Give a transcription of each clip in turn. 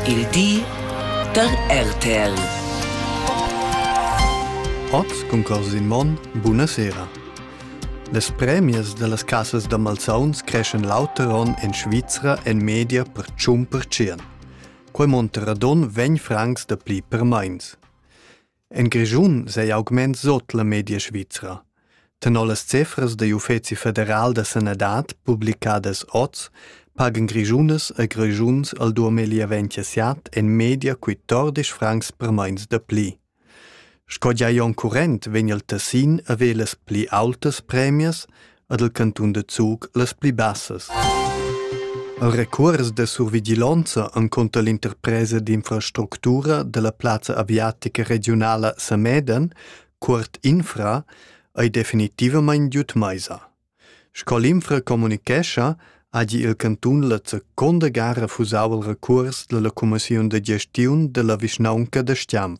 Il di da RTL. Oz cun cors in mon, buna sera. Las premias da las casas da malsauns creschan l'auter onn en Svizra en media per tschun per tschien. Quei monter radon vegn francs da pli per meins. En Grischun sei augment sut la media svizra. Tenor las cifras degl Uffeci federal da sanadad publicadas oz, pagan Grischunas e Grischuns al 2027 en media 14 francs per meins da pli. Sco gia onn current vegn il Tessin a velas pli autas premias, ad el cantun da Zug las pli bassas. El recuors da survigilonza encunter l'interpresa d'infrastructura della plazza aviatica regionala Sameden, Cuort Infra, ei definitivamain giut meisa. Sco l'Infra communichescha, hagi il cantun la seconda gara fusau il recurs della commissiun de gestiun della vischnaunca de Stianf.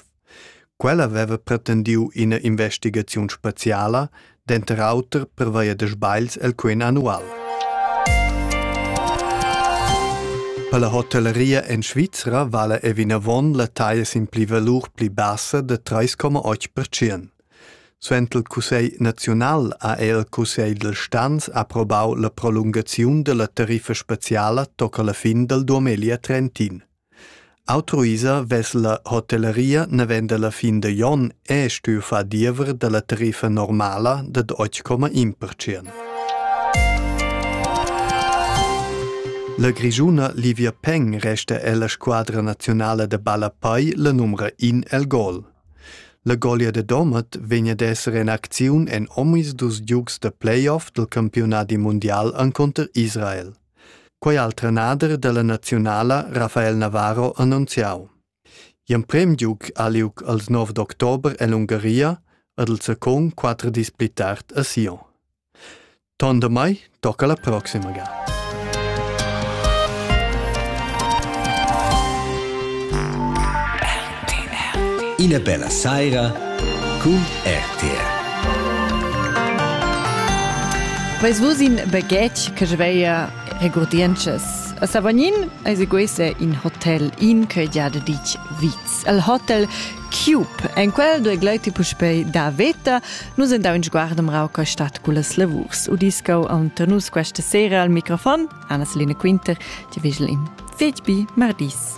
Quella veva pretendiu ina investigaziun speciala, denter auter pervia da sbagls el quen annual. Per la hotelleria en Svizra vala è vinavon la taglia sin pli valur pli bassa da 3,8%. Suent il Cussegl naziunal ha el Cussegl del Stanz approbau la prolungaziun della tariffa speciala tocca la fin del 2030. Autuisa vess la hotelleria naven dalla fin da Jon è stuiu far diever dalla tariffa normala dad otg comma in pertschient. La Grischuna Livia Peng resta ella squadra nazionala da ballapai la numra in el gol. La golia de Domat vegn ad esser en acziun en omis dus giugs da playoff del campionati mundial encunter Israel. Quei ha il trenader dalla naziunala Rafael Navarro annunziau. Gl'emprem giug ha liug als nov d'october ell'Ungaria ad el secon quater dis pli tard a Sion. Ton da mai tocca la proxima ga. Ina bella saira cun RTR. Veis vus in baghetg che sveia regurdientschas? A Savognin eseguesse in hotel in che gia de ditg viz. El hotel Cube. En quel due gleiti puspei da veta, nus endau in sguardem rauca stat cu las lavurs. Udiscau antanus questa sera al microfon Anna-Selina Quinter, ti vigel in fetbi mardis.